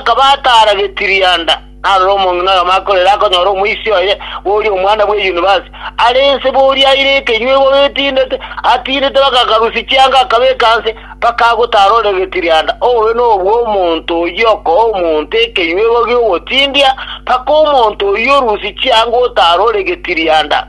Akaba ataara getirianda, narore omong'ina oyomo akorera akonyora omoisia oye, oria omwana bwe yunivasiti, are inse boria aire ekenywa igoro etindete, atindete bagakarusia chianga akabeka nse, mpaka agotaara ore getirianda. Obobe nobwo omonto oyio okoa omonto ekenywa igoro gi'ogotindia, mpaka omonto oyio orusie chianga otaara ore getirianda.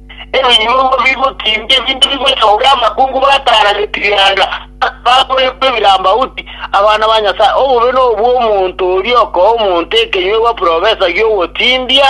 Ebinyuomo bigotimbia ebinto bigochogera amakungu batara getigenda, bakorekwa ebirambauti, abana ba Nyasae. Obobe nobwo omonto oria okoa omonto ekenyuegwa profesa gi'ogotimbia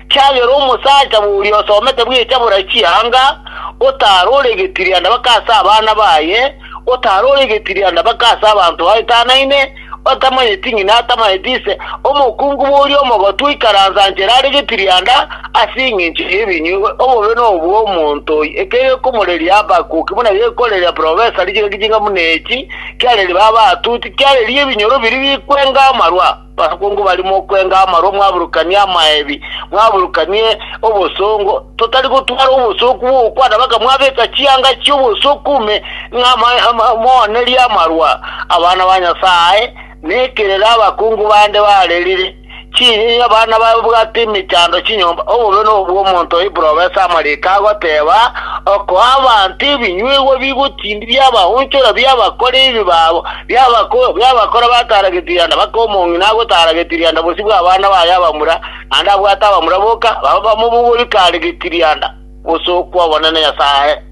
kiagera omosacha boria osomete bwecha bora chianga, otara ore getigenda baka ase abana baye, otara ore getigenda baka ase abanto baetanaine, otamanyeti ng'ina atamanyeti ise, omokungu boria omogotu oikaranse anchere are getirianda ase engencho y'ebinywa ebi, obobe nobwo omonto oyio, ekero gekomoreria Habakuki buna gekoreria profesa richiroki chinga buna echi, kiareria baba atuti, kiareria ebinyoro biria bikwenga amarwa, abakungu baria mokwenga amarwa mwaburukanie amaebi, mwaburukanie obosongo, totari gotwara obosooku bw'ogokwana, bakamwabeka chianga chi'obosooku ime ng'amoonerie amarwa abana ba Nyasae, na ekerero abakungu bande barerire chinyinyi, abana babwate emechando chinyomba, obobe nobw'omonto oiprobesa amariiko agoteeba, okoa abanto ebinyuegwa bigotindi biabaonchora biabakora ebibe babo, biabakora bataarageti rianda, bakoa omong'ina agotaarageti rianda bosio bw'abana baye abamura, naende abwate abamura boka babe bamobogori kare getirianda, gose okw'Omonene Nyasae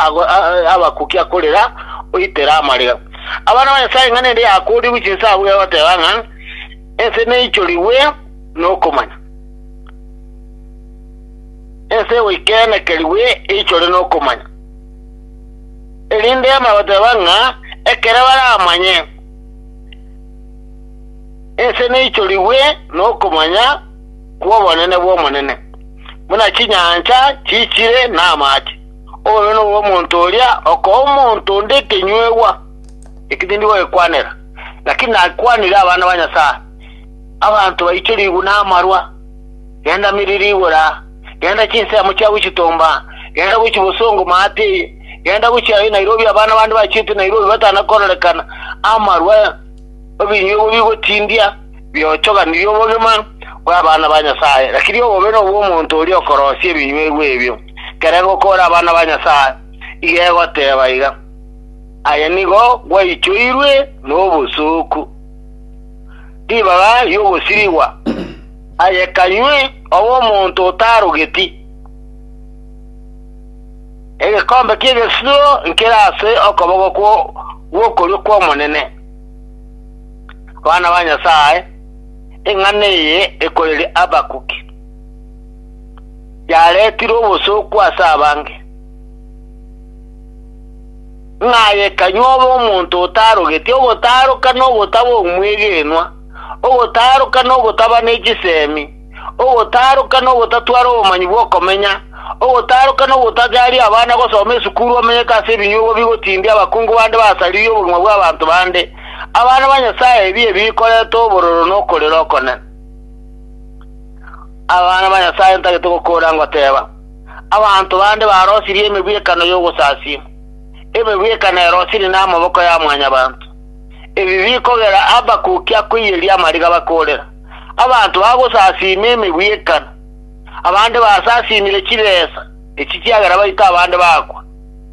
abakuki akorera, oitere amarega. Abana ba Nyasae ing'ana ende yakoorigwe chinsa abwo egoteba ng'a ense neichorigwe nokomanya, ense egoikenekerigwe eichore nokomanya, erinde emanye goteba ng'a ekero baramanye, Ense neichorigwe nokomanya kw'obonene bw'Omonene, buna chinyancha chiichire namache. Oyo noyo omonto oria okoa omonto onde ekenyuegwa eki tindi gogekwanera, lakini nakwanire abana ba Nyasae. Abanto baichorigwe namarwa, genda miri rigora, genda chinsemo chiabo chitomba, genda gochi bosongo maate eye, genda gochi aye Nairobi abana bande bachiete Nairobi batanakororekana, amarwa. Obinywa obwo bigotindia biochoganirie obogima bw'abana ba Nyasae, lakini obobe nobw'omonto oria okorosia ebinyuegwa ebio. Ekerengo okore abana ba Nyasae, iga egoteba iga, Aye nigo gwaichoirwe nobosooku, ribaga ri'ogosirigwa, aye kanywe obe omonto otarogeti, egekombe ki'egesisiro nkere ase okoboko gw'okorio kw'Omonene. Abana ba Nyasae, eng'ana eye ekoreria Habakuki, yareetirwe obosooku ase abange, ng'a aye kanywe obe omonto otaarogeti, ogotaaroka na ogotaba omwegenwa, ogotaaroka na ogotaba ne chisemi, ogotaaroka nogotatwara obomanyi bw'okomenya, ogotaaroka nogotachaaria abana gosoma esukuru omenyete ase ebinyuogo bigotindia abakungu bande basaririe obogima bw'abanto bande, abana ba Nyasae ebibe bikoretwe obororo nokorera okone. Abana ba Nyasae ntagete gokoora ngoteeba, Abanto bande barosirie emegwekano y'ogosasia, emegwekano erosirie namaboko ya Mwanyabaanto, ebi bikogera Habakuki akoiyeria amariga bakoorera. Abanto bagosasiima emegwi y'ekano, abande basasiimire chibesa echi chiagera baite abande bakwa.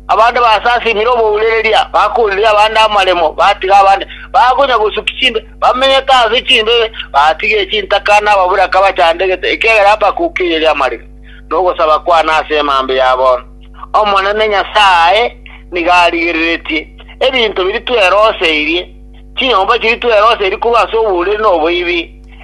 Abande basasiimire obourereria, bakooriria abande amaremo, batiga abande bakonya gosukia chimbe, bamenyete ase chimbebe, batiga chintaka na ababoraka bachandegete, ekiagera bakokiireria amariko na ogosaba kwane ase emambe ya bono. Omonene Nyasae nigo arigereretie ebinto biria tweroseirie. Chinyomba chiria tweroseiri korwa ase oboriri na oboibi,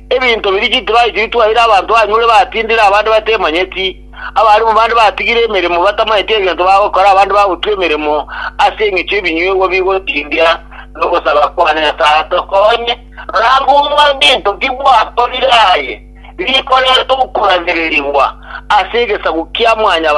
ebinto biria chitibayi chiria twaeire abanto banyure batindire abande batemanyeti, abarimu bande batigire emeremo batamanyeti egento bagokora abande bagotwa emeremo ase engecho y'ebinyuegwa bigotindia nogosaba kwane, Nyasae tokonye, rora ng'umba gento ki gwakorire aye, rikorete okuragererigwa ase egesaku kia Mwanyabanto.